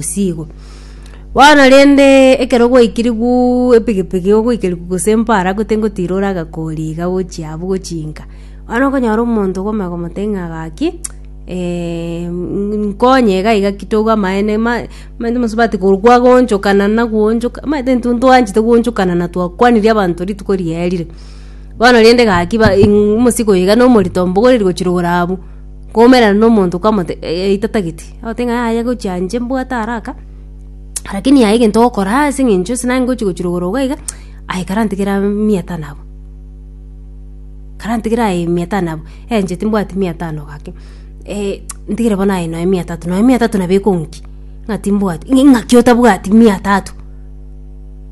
gose igo. Bono rende ekero gwaikirigwu epigipigi ogwaikirigwu gose mpara gute ngotira ore agakori iga gochia abwo gochinka bono okonyora omonto okome ogomotebi ng'a gaki eh, nkonye iga iga ki toigwe amaene ma omanyete omosubati korwa kwagonchokana nagoonchoka omanyete intwe ntwanchete goonchokana na twakwanirie abanto rituko riaerire. Bono rende gaki ba omosigo iga na omorito mbogoreria gochia rogoro abwo, kwaumerana na omonto kwamotebia eitata gete. Ogote ng'a yaya gochia inche mbwate haraka, lakini yaya egento ogokora ase eng'encho ase nare ngochia gochirogoro iga iga, aye karantigere aa mia tano abwo. Karantigere aye mia tano abwo, eh inche timbwati mia tano gaki, ntigire bono aye nonya mia tatu, nonya mia tatu nabo ekonki? Ng'a timbwati, ng'a ing'aki otabwati mia tatu?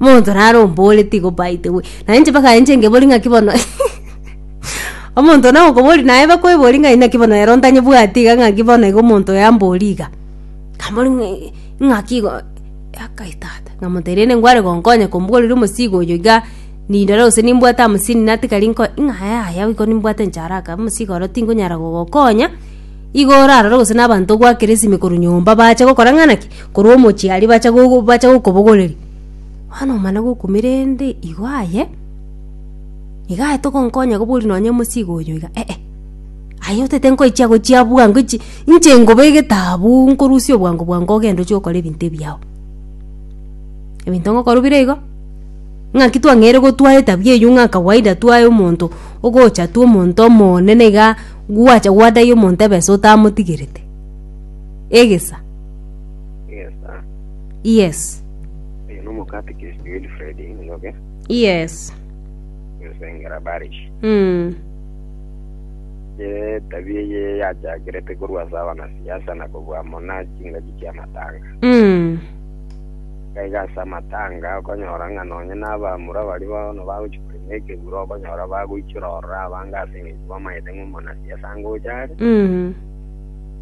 Monto naro ombore tigo by the way, nainche mpaka inche ngebori ng'aki bono. Omonto nao okoboria naye bakweboria ng'a inaki bono ero ntanyebwati iga ng'aki bono iga omonto oyo amboria iga. Nkamboria ng'a "Eh, ing'aki igo akai tata nkamotebia rende nkware gonkonye komboririe omosigo oyo iga nindore gose nimbwate hamsini nati kari nko ing'a yaya oiko nimbwate inche haraka omosigo oro tinkonyara gogokonya igo orarore gose na abanto ogwakera esime korwa nyomba bache gokora ng'a naki korwa omochie aria bache gogo bache gokobogoreria. Bono omana gokumira rende igo aye. Nigo aye togonkonya kobori nonye omosigo oyo iga eh, aye otete nkoichia gochia abua nkoichi inche nkoba egetabu nkorusia obwango bwango ogende ochia okore ebinto ebiao. Ebinto ngokora bire igo, ng'aki twang'eire gotwa etabia eywo ng'a kawaida twae omonto ogocha twa omonto omonene iga gwacha gwadaia omonto ebesa otamotigerete. Egesa. Egesa. Yes. Oyo no omokatikist Wilfred Njoroge. Yes. esengera Barish. Mm. Ye tabia eye yachakerete korwa ase abanasiasa na kobua amo na chingaki chi'amatanga. Mm. Gaiga ase amatanga okonyora ng'a nonye n'abamura baria bono bagochi korema ekegura okonyora bagoichora orora abange ase eng'encho bamaete ng'a omonasiasa ngocha are Mm.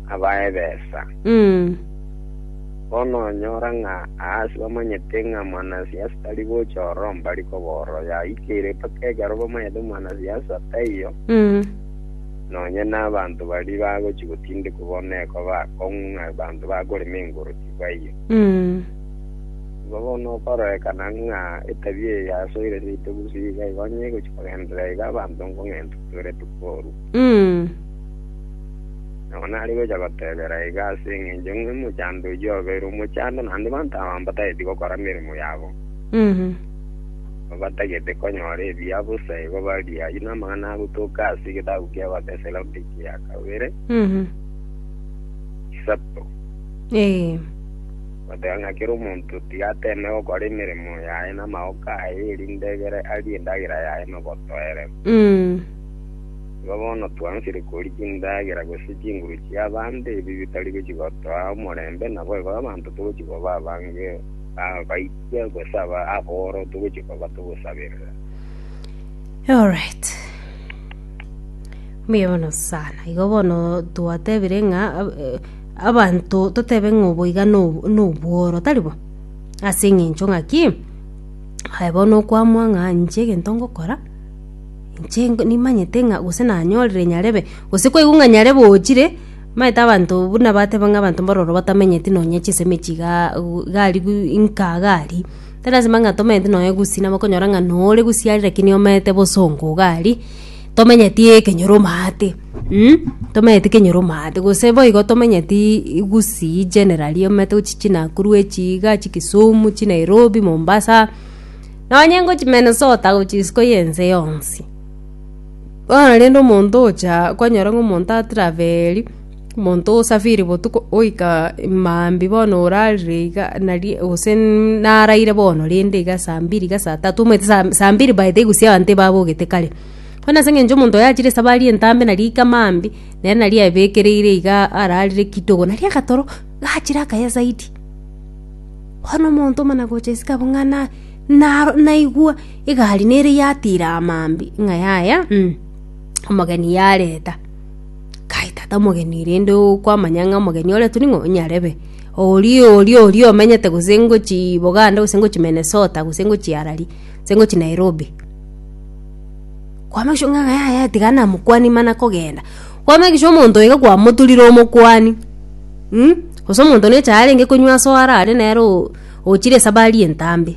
abae ebesa. Mm. Bono onyora ng'a aase bamanyete ng'a mwanasiasa tari gocha ororo mbari kobora oyaikeire mpaka ekero bamanyete mwanasiasa taiyo, nonye nabanto baria bagochia gotindekwa bono eko bakong'u ng'a abanto bakorema engoro tibaiyo. Igo bono okororekana ng'a etabia eye yasoire seito gusii iga igo onye egochia kogenderera iga abanto nkong'entwa twerete korwa. Nabo nare gocha gotebera iga ase engencho ng'a omochando oyio obeire omochando, na ande banto aba mbatageti gokora emeremo yabo, Mhm. na batagete konyora ebiya bosa, igo barie ayio namang'ana agotoka ase egetabu ki'Abatesaloniki gia kabere, Mhm. isato, Ee. goteba ng'a kera omonto tiga ateme gokora emeremo yaye namagoko aye, erinde egere arie endagera yaye nobotoereru. Mm. Igo bono twaanchire koria chindagera gose chinguru chi'abande, ebi bitari gochia gotoa omorembe, naboigo abanto togochia koba abange abaikia gose abooro togochia koba togosaberera. Alright. Mbuya mono sana. Igo bono twatebire ng'a eh, abanto totebe ng'a oboiga no- nobworo, tari bo? Ase eng'encho ng'a ki? Aye bono okwamwa ng'a inche egento ngokora Inche nimanyete ng'a gose nanyorire nyarebe, gose kwaigwa ng'a nyarebe ochire, maete abanto buna bateba ng'a abanto mbororo batamenyeti nonya chisemi chigaa u- igarigu inka iga aria, tilasima ng'a tomenyeti nonya gusii nabo okonyora ng'a nore gusii aria rakini omete bosongo iga aria, tomenyeti ekenyoro omate tomenyeti ekenyoro omate gose boigo tomenyetii gusii generally omete gochia chinakuru echiiga, chikisumu, chinairobi, mombasa. Nonye ngochia Minnesota gochia isiko y'ense yonsi. Bono rende omonto ogocha kwanyora ng'a omonto atraveli, omonto osafiri botuko oika maambia bono orarire iga nari gose naraire bono rende iga saa mbiri iga saa tatu omanyete sa saa mbiri by the way gusii abanto ebabogete kare. Bono ase eng'encho omonto oyo achire esabari entambe nari aika maambia, nere nari aebekereire iga ararire kidogo nari agatoro gachire akaye zaidi. Bono omonto omanagocha isiko abwo ng'a naigwa egari nere yatiira amambia ng'a yaya omogeni yareta. Kai tata omogeni rende okwamanya ng'a omogeni oretwe ning'o nyarebe. Oria oria oria omenyete gose ngochii Boganda gose ngochii Minnesota gose ngochii arari gose ngochii Nairobi. Kwa make sure ng'a yaya tiga namokwanie mana kogenda. Kwa make sure omonto iga kwamoturire omokwani. Gose omonto necha arenge konywa ase oare are nere ochire esabari entambe.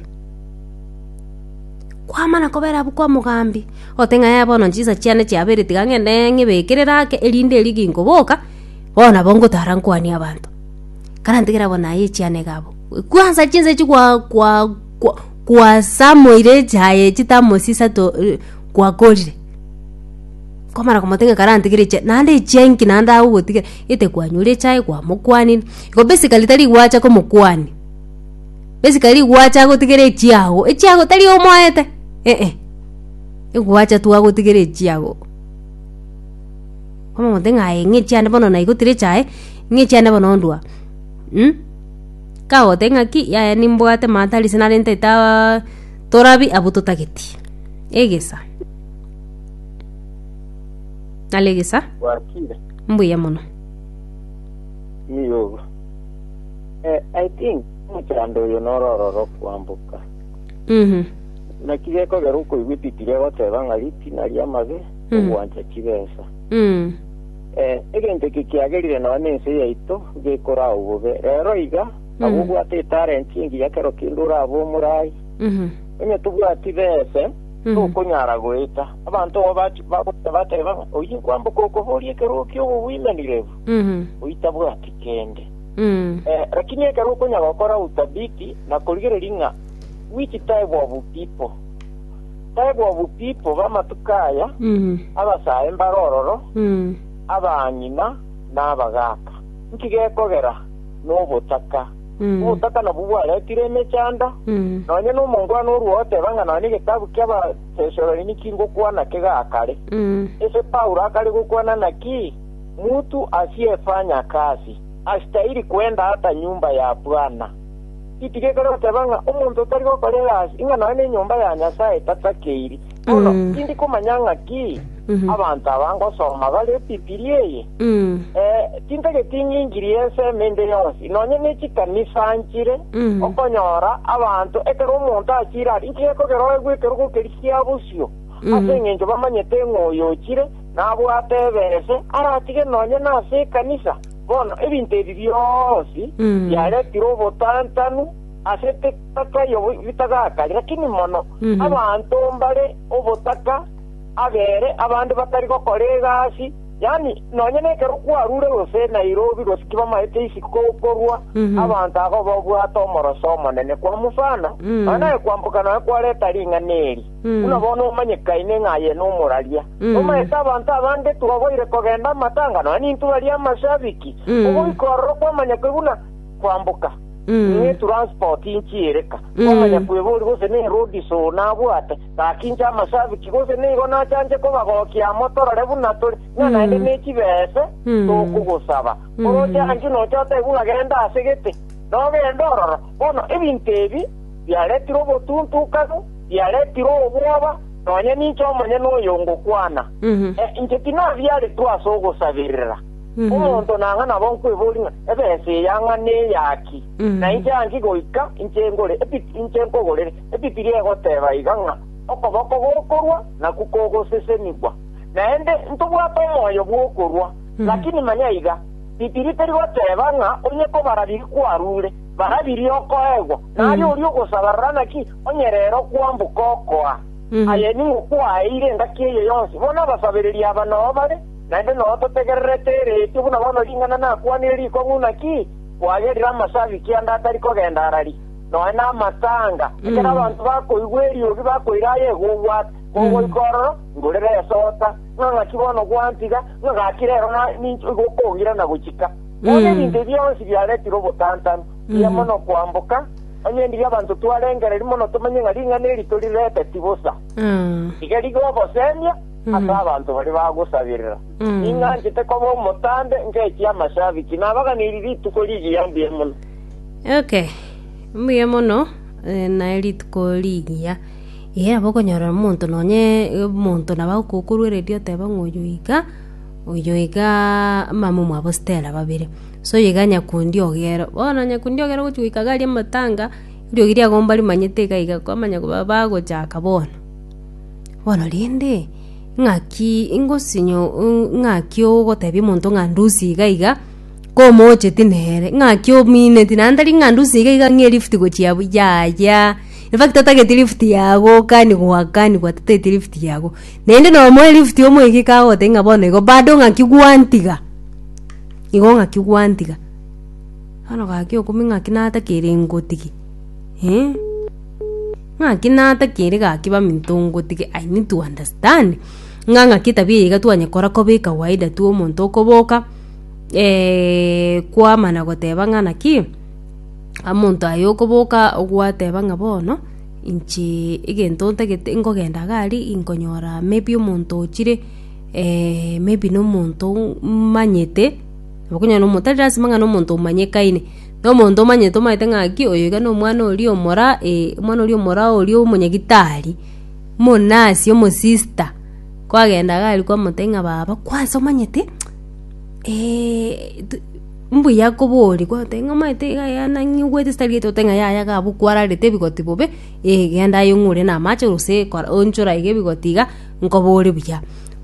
Kwamana kobera abwo kwa mogambi, ote ng'a yaya bono chinsa chiane chiabere tiga ng'ende ng'ibekerere ake erinde erio ginkoboka, bono nabo ngotara nkwanie abanto. Karantigere abwo naye echiane iga abwo. Kwansa chinsa echio kwa kwa kwa kwasamoire echaye chitamosisa to kwakorire. Nkomara komoteng'era kare antigere echa- naende echa enki naende agogotigera, gete kwanyure echaye kwamokwanire. Igo basically tari gwacha komokwania, basically gwacha gotigera echiago, echiago tari omoete, eeh. Egwacha tu agotigera echiago. Omote ng'a aye ng'a echiande bono naigotire echae, ng'a echiande bono ondwa kagote ng'aki yaya nimbwate maata arise nare ntaetaaa torabi abwo totageti, egesa. Nalegesa. Gwakire. Mbuya mono. Iyogo. Eh, I think omochando oyo norororo kwamboka. Mhm. Naki gekogera okoigwa epipiri egoteba ng'a ritina ria amabe Mm. ogwancha chibesa. Mm. Eh, egento eke kiagerire nonya na ense yaito gekora au bobe. Rero iga, Mm. abo obwate etalent engiya kero kende orabe omorai. Mhm. Onye tobwati bese, tokonyara goeta. Abanto abwo bach- bagocha bateba ng'a, Oyio nkwamboka okoboria ekerogo ki'obobuimanireru, oitabwati kende. Eh, lakini ekero okonya gokora utabiti na korigereria ng'a which type of people, type of people b'amatuko aya, abasae mbare ororo, abang'ina na abagaaka, nki gekogera nobotaka? Obotaka nabwo bwaretire emechando, nonya nomongwana orwogoteba ng'a nonya egetabu ki'Abatesaloniki ngokwana kegakare. Ese Paulo akare gokwana naki? Mutu asiefanya kazi asitahiri kwenda ata nyumba ya Bwana. Giti gekare goteba ng'a omonto otari gokora egasi, ing'a nonya nenyomba ya Nyasae tatakeiri. Bono tindi komanya ng'aki abanto aba ngosoma bare Bibilia eye. Tintageti ng'inchirie ensemo ende yonsi, nonya ne chikanisa nchire. Okonyora abanto ekero omonto achire aria, inki gekogeroegwa ekero gokerigia bosio? Ase engencho bamanyete ng'a oyo ochire nabwate eberese, aratige nonya nase ekanisa. Bono ebinto ebi bionsi biaretirwe obotantanu. ase etagato y'obitagaka, lakini mono abanto mbare obotaka abere abande batari gokora egasi, yaani nonya nekero kwarure gose Nairobi gose kibamaete isiko korwa abanto agwo babwate omoroso omonene. Kwa mfano, nonya naye kwamboka nonya kwareta ring'ana eri, buna bono omanyekaine ng'a aye nomoraria, nomaete abanto abange twaboire kogenda amatanga, nonya nintwe baria amashabiki, ogoika ororo kwamanya ki buna kwamboka, niye transport inki ereka, kwamanya kwebori gose ne road show nabwate, gakinche amashabiki gose nigo nachanche kobagokia amo torore buna tore, ng'a naende nechibese tokogosaba. Oroche angio nocha otebwe ng'a genda ase gete, nogende ororo. Bono ebinto ebi biaretire obotuntukanu, biaretire obwoba, nonya ninche omonyene oyo ngokwana. Eh, inche tinabiaretwe ase ogosaberera. Omonto nang'a nabo nkweboria ng'a, Ebesa eya ng'a neya ki? Na inche anki goika inche ngore Ebibiri, inche nkogorere. Ebibiri egoteba iga ng'a, Okoboko gokorwa nakwo kogosesenigwa. Naende ntobwate omoyo bw'okorwa. Lakini manya iga, Bibiri teri goteba ng'a onye kobara biri kwarure, bara biria okoegwa, na aria oria ogosaba rora naki onye rero kwamboka okoa. Aye ning'o kwaeire engaki eye yonsi, bono abasabereri aba nao bare. Naende noo totegererete eretio buna bono ring'ana nakwanire rikong'u naki kwagerire amasa abike ande atari kogenda arari, nonya namatanga, ekero abanto bakoigwa eriogi bakoira aye gogwata, kogoika ororo, ngorera esota, ng'a ng'aki bono gwantiga, ng'a gaki rero na ninche oigo okongira na gochika. Bono ebinto ebi bionsi biaretire obotantanu, mbuya mono kwamboka, onye ndiria abanto twarengereria mono tomenye ng'a ring'ana eri torireteti bosa. Rigerio obosemia. ase abanto baria bagosaberera. Ninganchete koba omotambe ngechie amashabiki, nabaganeirie rituko rigiya mbuya mono. Okay. Mbuya mono eh, naye rituko rigiya. Iga nabo okonyorera omonto nonye omonto nabo agokokoruereria oteba ng'a oyo iga oyo iga mama omwabo Stella babere. So iga nyakundi ogere. Bono nyakundi ogere ogochi goika iga aria amatanga, eriogi riagomba rimanyete iga iga kwamanya koba bagochaka bono. bono rende ng'aki ngosinyo ng'aki ogotebia omonto ng'a ndusie iga iga komocheti nere ng'aki omineti naende tari ng'a ndusie iga iga ng'a elift gochia abwo yaya infact otageti lift yagokani goakani gwateteti lift yago naende na omoe lift omoegiki kagotebi ng'a bono igo bado ng'aki gwantiga igo ng'aki gwantiga bono gaki okumbe ng'aki natakeire ngotige eh. Ng'aki natakiri gaki baminto ngotige I need to understand ng'a ng'aki etabia eye iga twanyekora koba ekawaida twa omonto okoboka eh, kwamana goteba ng'a naki omonto aye okoboka gwateba ng'a bono inche egento ntagete nkogenda iga aria inkonyora maybe omonto ochire eh maybe nomonto mmanyete, nabo okonyora nomonto tari lasima ng'a nomonto omanyekaine. Nomonto omanyete omanyete ng'aki oyo iga nomwana oria omora ee omwana oria omora oria omonyagitari, omonasi omosista, kwagenda iga aria kwamotebia ng'a baba kwansa omanyete tu mbuya koboria kwagoteba ng'a omanyete iga yaya nanyigwete ase tari getoto ng'a yaya iga abwo kwararete ebigoti bobe, ee genda aye ong'ure na amache gose kora onchore aiga ebigoti iga nkobore buya.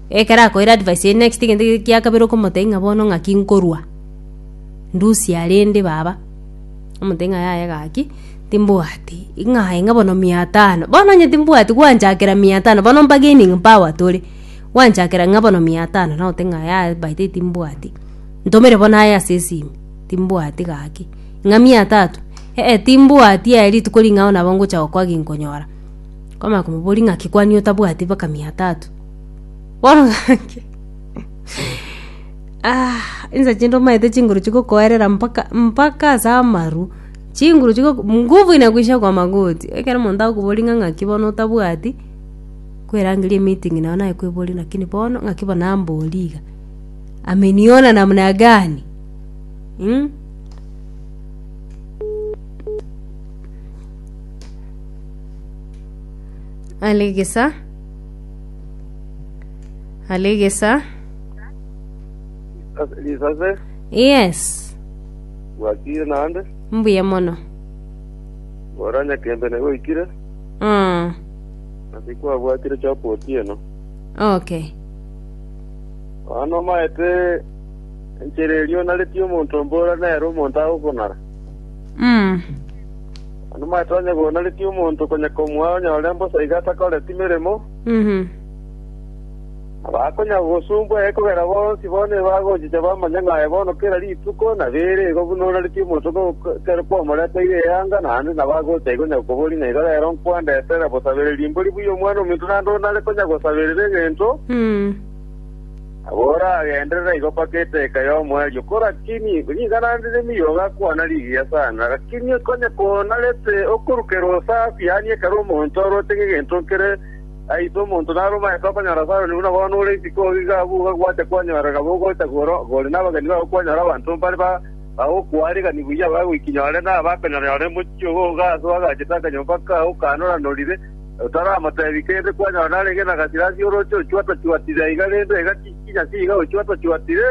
Ekero akoeire advice eye next egento ekeria kia kabere okomotebia ng'a bono ng'aki nkorwa. Ndusia rende baba. Omonto ng'a yaye gaki timbwati ng'aye ng'a bono mia tano bono onye timbwati gwanchakera mia tano bono bargaining power tore gwanchakera ng'a bono mia tano nabote ng'a yaye by the way timbwati ntomere bono aye ase esimi timbwati gaki ng'a mia tatu ee timbwati aye rituko ring'ao nabo ngocha gokoa ginkonyora kwamanya komoboria ng'aki kwani otabwati mpaka mia tatu bono gaki Insa chinde omanyete chinguru chigokoerera mpaka mpaka ase amaru, chinguru chigo nguvu inakuisha kwa magoti, ekero omonto akobori ng'a ng'aki bono otabwati, kwerangeria emeeting nao naye koeborie lakini bono ng'aki bono nambori iga, ameniona namna gani? Are gesa, are gesa. Ase- Risase, Yes. gwakire naende, Mbuya mono. ora nyakembe nigo oikire, Mm. nasi kwabwatire chopo otieno. Okay. Bono omaete enchera eria onaretie omonto mbora nere omonto agokonara. Mm. Bono omaete onye gonaretie omonto konya komwa onyore mbosa iga atakoreti meremo, Mhm. Abakonyara gosumbwa ee kogera bonsi bono ebagochicha bamanye ng'a aye bono kera rituko nabeire igo buna onaretie omonto kw'egokerwa kw'omoreteire eanga, naende nabo agocha igo nyakoboria ng'a iga rero nkwandetere bosabereria mbori buya Omwana-o-Ominto naende onare konya gosaberera egento, nabo oragenderere igo mpaka eteka y'omoerio. Korakini nigo naende nemiyogo akwana rigiya sana, rakini konya konarete okorukerwa osafi, yaani ekero omonto oroche ng'egento nkere, Aise, omonto naromanyete okonyora Sayoni buna bono ore isiko oo iga abwo ogagwate kwanyora nabo ogocha kworo ore nabageni bao kwanyora abanto mbare bagokwaaregani buya abagoiki nyore na abakonyora nyore mochie obo oga aase oagachete akanyomba kao kanoranorire otaramotebi kende kwanyora narenge na gasira ase orooche ochwata-chwatire aiga rende egati chinyasi iga ochwata-chwatire.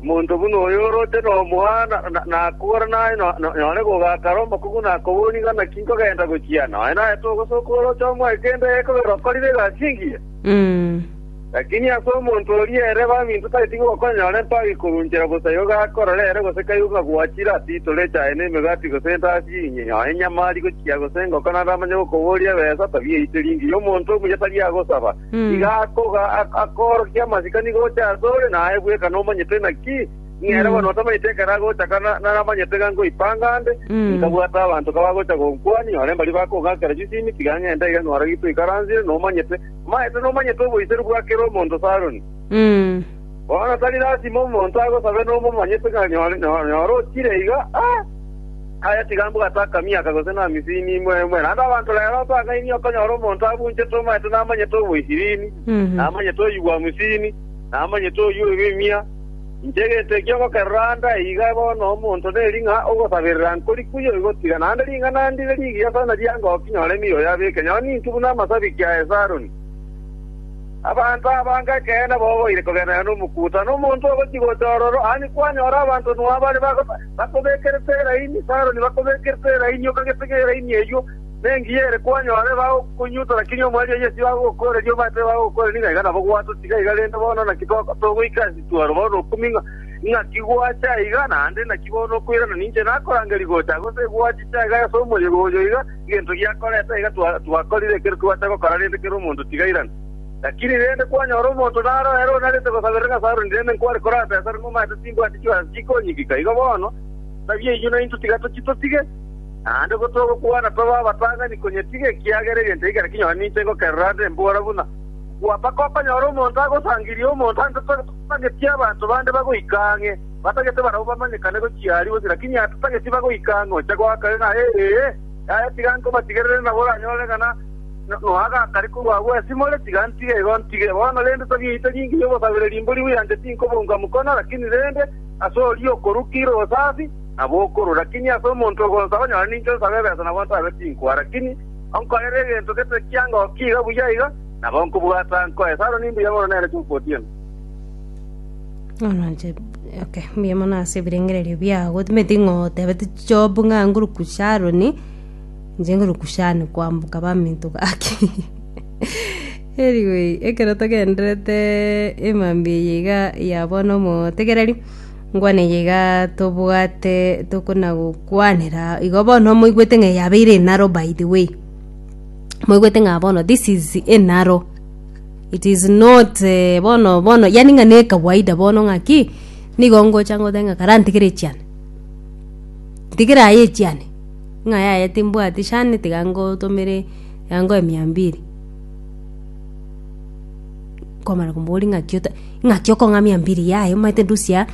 Omonto buna oyo oroche nomwana, na akogore naye, nonyore kogakara omokungu na koboria, Ng'a naki nkogenda gochia? Nonya naye togosoka oroche omoe kende ekogera okorire egasi engiya. Lakini ase omonto oria ere baminto tageti gokonyora empago ikorunchera bosa igo gakorora ere gose kaigu ng'a gwachire ase itoro echaye na emegati gose endasi engiya, nonya enyama ari gochia gose engoko naende amanye gokoboria, Ebesa tabiaite ringiri, omonto omuya tari agosaba. Iga akoorokia amasikani gocha asore, na aye bweka nomanyete. Naki ing'ere bono otamanyete ekero agocha, ka naramanyete ng'a nkoipanga ande, inkabwate abanto kabagocha gonkwania, nyore mbari bakong'akera chisimi, tiga ng'ende iga ng'ore gitwe oikaransire, nomanyete, omanyete nomanyete oboiseru bwa kera omonto Saroni. Bono tari lasima omonto agosabe nomomanyete ng'a nyora ochire iga, aye tiga mbwe gataka miaka gose namisini imwe imwe. Naende abanto rero otang'aini okonyora omonto abunchete omanyete namanyete omoisirini, namanyete oyigwa omisini, namanyete oyio oirwe imia. Inche egento ekio ngokerora ande aa iga bono omonto neri ng'a ogosaberera nkori kuya oigotiga, naende ring'ana ndire rigiya sana riangoki nyore emiyoyo abeke, nonye ninki buna amasabiki a Esaroni. Abanto abange ekeene bogoire kogenderera nomokuuta, na omonto ogochia gocha ororo, aye kwanyora abanto nao abare bakobekerete eraini, Saroni bakobekerete eraini, okagete ng'eraini eyio nengiya ere kwanyore bagokonyuta, naki nigo omweri o Yeso agokokoreria obatebe bagokore nigo aiga nabo gwatotiga iga, rende bono naki togoika ase etuaro bono okumie ng'aki gwacha iga, naende naki bono okoirana ninche nakorangeria gocha gose gwachicha iga ase omorierio oyo iga. Egento giakoreta iga twakorire ekero twacha gokora rende kera omonto tigairane. Lakini rende kwanyora omonto nare oere onarete gosaberera ng'a Saulo nirende nkware kore aase asare nomaete timbwati chibesa chikonyigika, igo bono nsabie inwe naintwe tiga tochie totige, naende bo togokwana tobe abatang'ani konya tiga ekiagera egento ekio kera kinyore ninche ngokerora ande mbora buna gwa mpaka okonyora omonto agosangirie omonto ande totageti abanto bande bagoika ang'e. Batagete barabwo bamanyekane gochia aria gose, lakini atageti bagoika ang'e ocha goaka ng'a, Ee, yaya, tiga nkobatigerere nabo oranyorere ng'a noa gakare korwa agwo esimore, tiga ntige igo ntige. Bono rende togiite ring'o y'obosabereri mboria bw'enyancha tinkobunga mokono, lakini rende ase oria okoruka ire obosafi, nabo okorua. Lakini ase omonto ogonsaba, nyora ninke nsabe ebesa nabo ntabe tinkoa, lakini onkorere egento gete ekianga okiiga buya iga, nabo nkobwata nkoe. Saro, Nimbuya mono nere Chofu otieno. okay mbuya mono ase ebirengererio biago timanyeti ng'otebete job ng'a ngoruku sharoni inche ngoruku shani kwamboka baminto gaki anyway ekero togendererete emambia eye iga ya bono omotegereri ngwane eye iga tobwate tokona gokwanera igo bono moigwete ng'a yabeire enaro by the way moigwete ng'a bono this is enaro. It is not eh, bono bono yani ng'a ne kawaida bono ng'a ki nigo ngocha ngote ng'a kara ntigere echiane ntigere aye echiane ng'a yaya timbwati shani tiga ngotomere tiga ngoe mia mbiri nkomana komoboria ng'aki ota ng'aki okong'a mia mbiri yaye omanyete ndusia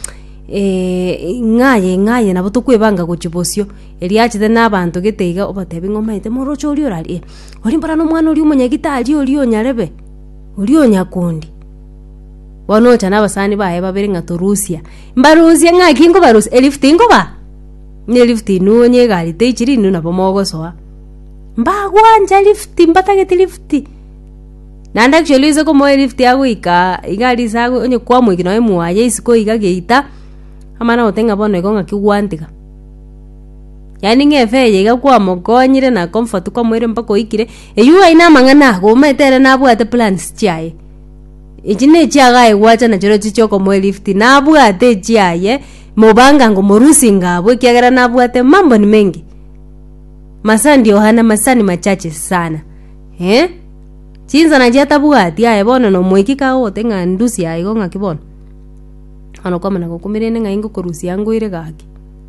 ng'aye ng'aye nabo tokoebanga gochia bosio erio achete na abanto gete iga obatebi ng'a omanyete moroche oria orari eh. Orimbora nomwana oria omonyagitari oria o nyarebe, oria o nyakundi. Bono ocha nabasani baye babere ng'a torusia. Mbarusie ng'aki nkobarusia, elift nkoba? Na elift inwe onye egari teichiri inwe nabo mogosoa. Mbagwancha lift, mbatagete lift. Naende actually oise komoa elift agoika iga aria ase ago onye kwamoiki nonye mwaya isiko iga geita, amana gotenga bono igo ng'aki gwantiga. Yaani ng'efe eye iga kwamokonyire na comfort kwamoire mpaka oikire, eywo aye namang'ana ago omanyete ere nabwate plans chiaye. Echi nechiagaye gwacha nachireo echi chiokomoelift nabwate echiaye mobangango morusinga abwo ekiagera nabwate mambo ni mengi. Masaa ndio hana masaa ni machache sana eh. Chinsa nachio atabwati aye bono nomoiki kaye ogote ng'a ndusie aigo ng'aki bono. Bono kwamana gokumire inde ng'ai ngokorusia ngoire gaki.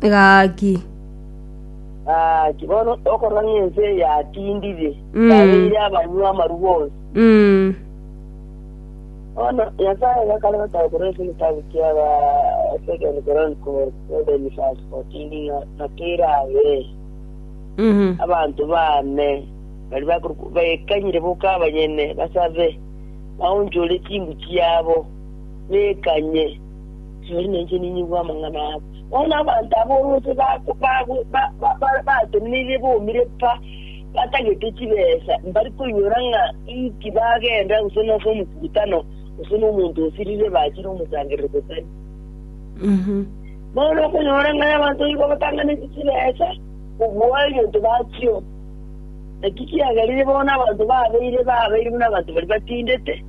Gaki. Gaki. Bono okorora ng'a ense yatindire, Mm. yabeire abanywa amarua onsi. Mm. Bono Nyasae gakare gotaka korwa ase egetabu kia ba Second Chronicles 7 verse 14 ng'a nakere abe Mhm. abantu bane bari bakor- baekanyire boka abanyene basabe baonchore ching'u chiabo bekanye tori nainche ninyigwe amang'ana abo Bono abanto aba orwonse babatenenirie bomire pa, batagete chibesa, mbari koinyora ng'a inki bagenda gose nase omokutano, gose nomonto osirire bachire omosangerero Betania. Bono okonyora ng'a abanto nigo batanganeti chibesa kobua egento bachio, naki kiagerire bono abanto babeire babeire buna abanto baria batindete,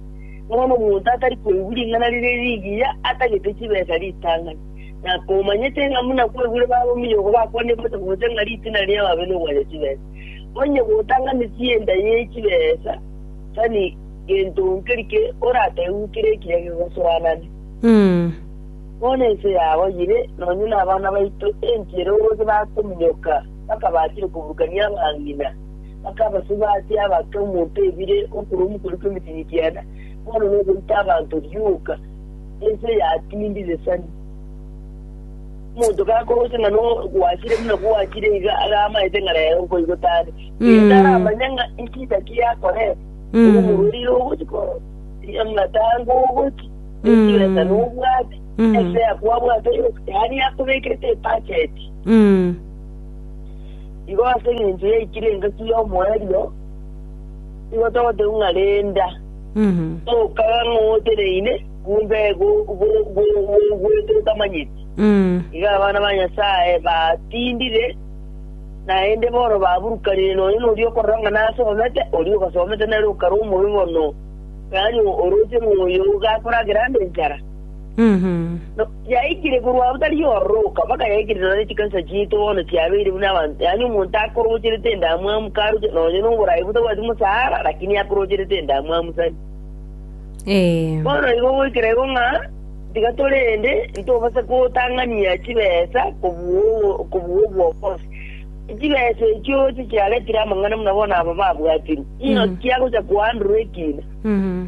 bono omonto atari koigwa ring'ana riria rigiya atagete chibesa ritang'ani. na komanyete ng'a buna kwegure babominyo oko bakwanire gose gose ng'a ritina riabo abe nogwachia chibesa. Onye gotanga misia enda ye chibesa, tari gento nkeri ke orategwe kere ekiya gegosoanane. Bono ense yabo yire nonya nabana baito enchera obose bakominyoka bakabachire koburukania abang'ina, bakabasuba ase abake omonto ebire okorwa omokori kw'emetinyinki ena, bono nokorita abanto rioka. ense yatindiresani. Omonto gakoroche ng'a no gwachire buna gwachire iga agamaete ng'a rero nkoigwe tare. Iga taramanya ng'a ekida ki yakorete. Obo omorweri ira ogochi koro. Iga muna tango ogochi. Ekiwesa nobwate. Ese yakwabwate yose. Yaani yakobekerete ebacheti. Igo ase eng'encho yaikire engaki y'omoerio, igo togoteba ng'a renda. Tokaga ng'a oteneine, kumbe gogwete otamanyeti. Iga abana ba Nyasae batindire, naende bono baburukanire nonya noria okorora ng'a nasomete, oria ogasomete nere okare omobe mono, yaani oroche ng'a oyo gakoragera nde enchara. Yaikire korwa ntari y'ororoka mpaka yaikire nane chikanisa chiaito bono chiabeire buna abanto, yaani omonto akoroocherete endamwamu karuche nonye noborai botabwati mosaara, lakini akoroocherete endamwamu sani. Ee. Bono igo goikera igo ng'a tiga torende ntobase gotang'ania chibesa kobua obo- kobua obwokosi. Chibesa echio chichiaretire amang'ana buna bono aba babwatirwe, ng'aki agocha koandorwa ekiina? Mhm.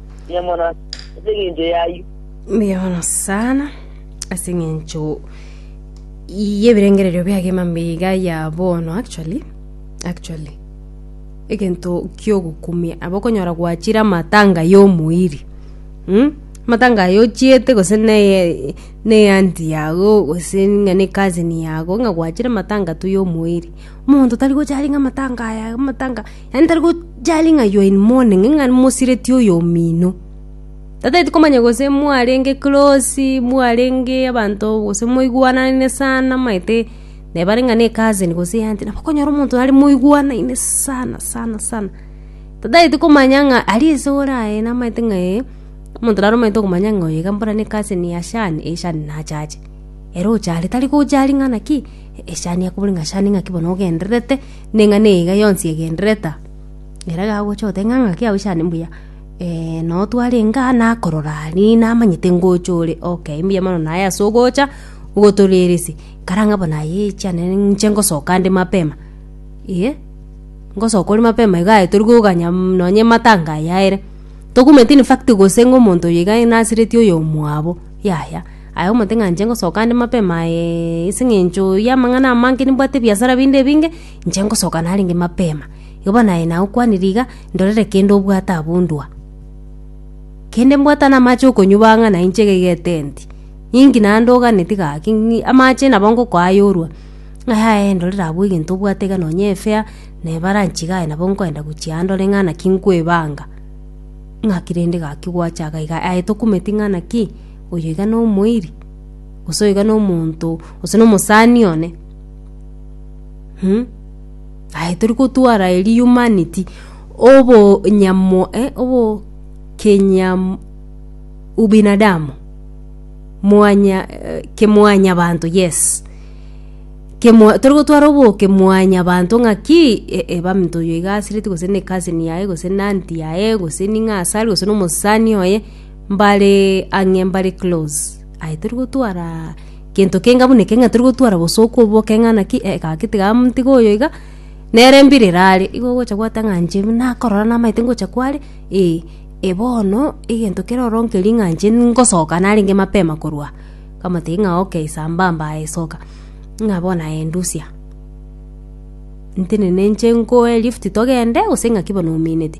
Mbuya mono ase engencho y'ayio. Mbuya mono sana ase eng'encho y'ebirengererio biage emambe iga ya bono actually actually egento kiogokumia abo okonyora gwachire amatanga y'omoiri mm? amatanga aye ochiete gose neye neye anti yago gose ng'a ne cousin yago ng'a gwachire amatanga tu y'omoiri omonto tari gocha are ng'a amatanga aya amatanga Yaani tari gocharia ng'a you are in mourning, ng'a mosireti oyo omino. Tataeti komanya gose mwarenge close, mwarenge abanto gose moigwanane sana omanyete neba are ng'a ne cousin gose e aunty, nabo okonyora omonto are moigwanaine sana sana sana. Tataeti komanya ng'a aria ase ore aye namanyete ng'a ee, omonto nare omanyete okomanya ng'a oyo iga mbora ne cousin ya Shan, ee Shan nache ache. Ere ocha are tari gocharia ng'a naki, ee Shan akobore ng'a Shan ng'aki bono ogendererete. Ning'a niga yonsi egendereta, ere gagocha goteba ng'a ng'aki yao chane mbuya, eh, na otware enga nakorora aria namanyete ngocha ore, okay mbuya mono naye ase ogocha ogotorerese, kara ng'a bono aye chiane nche ngosoka nde mapema, eh, ngosoka ore mapema iga aye torikoganya mm nonye matanga aya ere, tokumanyete in fact gose ng'a omonto oyo iga nasiretie oyomwabo, yaya. Aye omonto ng'a inche ngosoka ande mapema aye, ase eng'encho y'amang'ana amange nimbwate ebiasara binde ebinge, inche ngosoka narenge mapema. Igo bono aye nagokwanire iga, ndorere kende obwate abondua. Kende mbwate namache okonywa bang'a na inche iga iga etenti, ninki naende oganeti gaki ng'i amache nabo ngokoa ayorwa. Ng'aya aye ndorere abwo egento obwate iga nonye efea, na ebaranch iga aye nabo nkoenda gochia aa ndore ng'a naki nkoebanga. Ng'aki rende gaki gwacha iga iga, aye tokumeti ng'a naki. Oyo iga nomoiri, gose oyo iga nomonto, gose nomosani one, aye tori gotwara eeri humanity, obonyamo obokenyam ubinadamu, mwanya kemwanyabanto, yes, kemwa tori gotwara oboke mwanyabanto ng'aki ebaminto oyo iga asireti gose ne cousin yaye, gose ne aunty yaye, gose ning'a asare, gose nomosani oye. Mbare ang'e mbare close aye tori gotwara gento kenga buna ekeng'ina tori gotwara bosa okobo keng'ana ki eh gaki tiga tiga oyo iga, nere mbire erare igo ogocha gwateba ng'a inche buna nakorora namaete ngocha kware eh, eh bono egento kere ororo nkeria ng'a inche ngosoka narenge mapema korwa aa. Nkamotebia ng'a okay sambamba aye soka, ng'a bono aye ndusia ntenene inche nkoe lift togende gose ng'aki bono oumineti.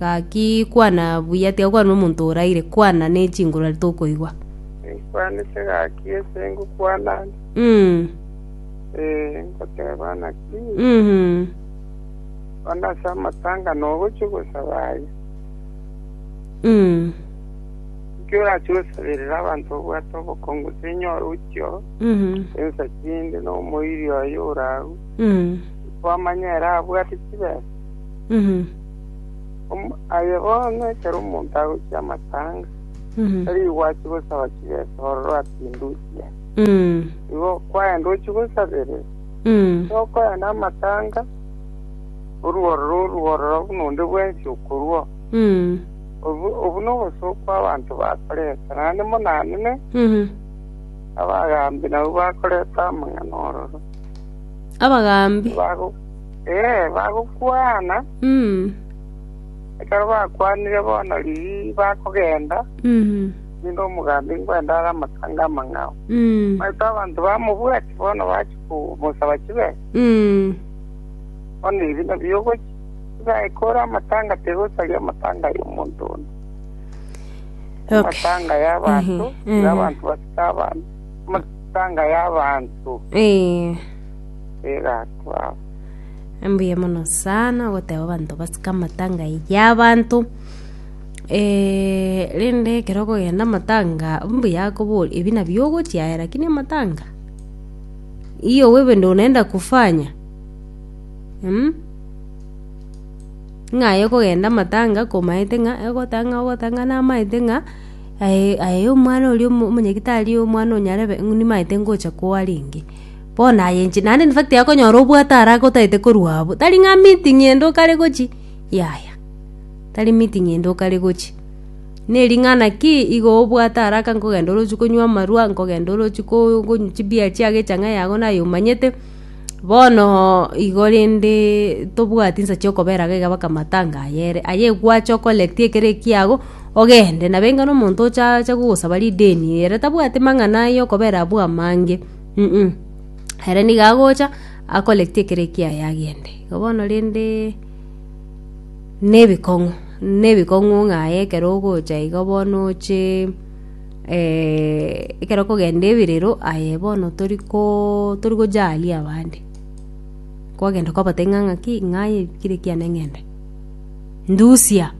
Gaki, kwana buya, tiga kwana omonto oraire, kwana ne chinguru aria tokoigwa. Inkwanete gaki ase ngokwana ande, Mm. ee, nkoteba naki, Mhm. kwana ase amatanga nogochia gosaba aye. Mm. Nki orachie gosaberera abanto obwate obokongu gose enyore ochio Mhm. ensa chinde nomoiri oye oragu, Mm. nikwamanya ere abwate chibesa? Om- Aye bono ekero omonto agochia amatanga, tari gwachi gosaba chibesa ororo ati indusia, igo kwaenda ochie gosaberera. Tokoya namatanga, orue ororo orue ororo buna onde bwensi okorua. Obu obu nobosooku bw'abanto bakoreta, naende monanene abagaambi nabwo bakoreta amang'ana ororo. Abagaambi. Bago- Ee, bagokwana. Mm. Ekero bakwanire bono riria bakogenda, Mhm. ninde omogambi nkwenda are amatanga amang'ao. Mm. Maete abanto bamobwati bono bachi komosaba chibe, Mm. bono ebi nabio ogochi. Tigae kore amatanga tegosaria amatanga y'omonto onde. Okay. Amatanga y'abanto, Ehe, ehe. y'abanto basika abantu. Amatanga y'abanto. Eh. egatwao. Mbuya mono sana ogoteba abanto basike amatanga ya abanto eh, rende ekero okogenda amatanga mbuya akobora ebi nabio ogochia aye lakini amatanga iyo wewe ndio unaenda kufanya mm? ng'a aye okogenda amatanga komaete ng'a egoteba ng'a ogoteba ng'a namaete ng'a aye aye omwana oria omo- omonyagitari omwana onyarebe nimaete ngocha koa renge. Bono aye inche naende in fact akonyora obwate are agotaete korwa abwo, tari ng'a meeting ende okare gochia, yaya, tari meeting ende okare gochia. Na ering'ana ki igo obwate araka nkogenda orochi konywa amarwa, nkogenda orochi ko- konywa chibeer chiago echang'aini yago naye omanyete, bono igo rende tobwati nsa chiokobera iga iga mpaka matanga aye ere, aye gwache o collect ekero ekiago, ogende, nabo enga na omonto ocha acha gogosaba rideni ere tabwati mang'ana ayokobera abwo amange. Inee! Ere nigo agocha, akoregete ekero ekiaye agende. Igo bono rende nebikong'u, nebikong'u ng'a aye ekero ogocha igo bono oche ekero okogenda ebirero aye bono tori ko tori gojaria abande, kwagenda kwabatebia ng'a ng'aki ng'aye kire ekiane ng'ende. Ndusia!